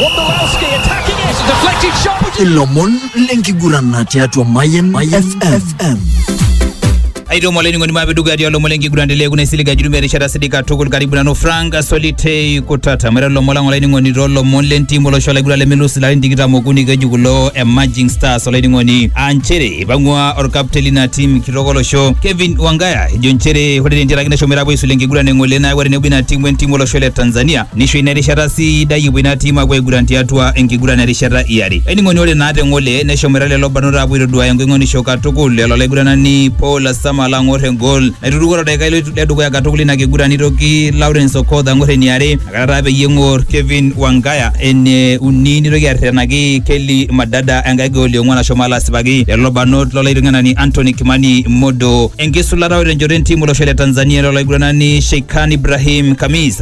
Wondolowski attacking it. Deflected shot. ilomon lenkigurana tiatua mayen fm aitoo mole ning'oni maape dukuya tialo lomon lenkiguran telee kuna isilig ajuru merishata sidai katukul karibu nanu frank solitei kutata mwere lomon lang olainining'oni too lomon lentim olosho laiguran lemelus ilarin tikitam okuni keju kulo emerging stars olainining'oni aa nchere ipang'ua orkapten lina tim kitok olosho kevin wangaya ejo nchere ore tentiaraki neshomoita apuo aisulu enkiguran eng'ole nayawua tenebo ina tim wentim olosho le tanzania Nisho ina erishata sidai epuo ina tim apuo aiguran tiatua enkiguran erishata iare. Ainining'oni ore naa te ng'ole neshomoita lelo barnot apuo aitoduaya engoing'onisho katukul elo olaiguranani Paul Asama alo ang'or engol naituruko to daikai le dukuya katukul ina kiguran nitoki Lawrence Okoth ang'or eniare nakata taa peyie eng'or Kevin Wangaya ene uni nitoki arretenaki Kelly Madada enkae gol eong'uan ashomo alo asipaki lelo barnot lo laiteng'enani Anthony Kimani Modo. Enkisulata ore tenchoto entim olosho le Tanzania elo olaiguranani Sheikhan Ibrahim Kamis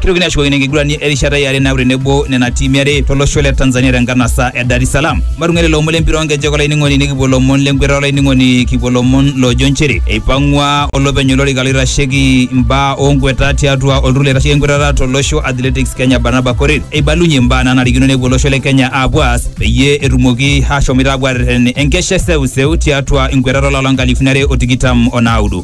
Kitokini ashukokino enkiguran erishata e are naaku tenebo nena tiimi are tolosho le Tanzania tenkanasa e Dar es Salaam. Matung'ai lelo omon lempira oonkejek olainining'oni nikipuo lomon lenkweta olainining'oni kipuo lomon loojo nchere eipang'ua olopeny olorika loitasheki imbaa oonkweta tiatua olturur loitasheki enkwetata tolosho Athletics Kenya Barnaba Korir eibalunye imbaa naanarikino nepuo olosho le Kenya aapuo aas peyie etumoki aashomoita aapuo aarreten enkesha e seuseu tiatua enkwetata olapa loo nkalifuni are o tikitam o naudo.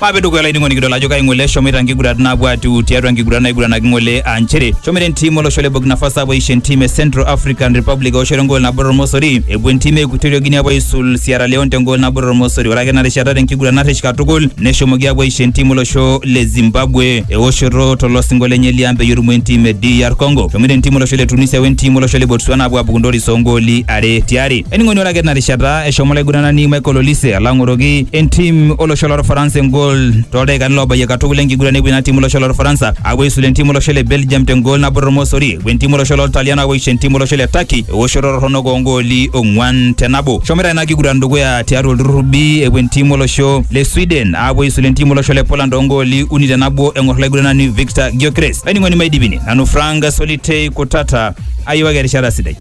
Maape dukuya olainining'oni kidol ajo kai ng'ole eshomoita nkigurat naapuo atiu tiatua nkigurat naiguranaki ng'ole aa nchere shomoita entim olosho le Burkina Faso apuo aisho entim e Central African Republic eoshoto engool nabo tormosori epuo entim e Equatorial Guinea apuo aisul Sierra Leone tengool nabo tormosori ore ake ena rishata tenkiguran narresh katukul neshomoki apuo aisho entim olosho le Zimbabwe eoshoto tolosingo lenye liang peyie erumoo entim e DR Congo shomoita entim olosho le Tunisia wentim olosho le Botswana apuo apuku ntoris oongooli are tiare Ening'oni ore ake tina rishata eshomo olaiguranani Michael Olise alo ang'oroki entim olosho lorfaransa engol toldaikani loobayie katukul enkiguran epuo ina tim olosho lorfaransa apuo aisula entim olosho le Belgium tengol nabo tormosori epuo entim olosho loltalian apuo aisho entim olosho le Turkey ewoshoto torronok oongooli ong'uan te nabo. Eshomoita ina kiguran dukuya tiatua olturrur B epuo entim olosho le Sweden apuo aisula entim olosho le Poland oongooli uni te nabo eng'or olaiguranani Victor Gyökeres. Olainining'oni maidipini nanu Frank Solitei Kutata ayiewaki erishata sidai.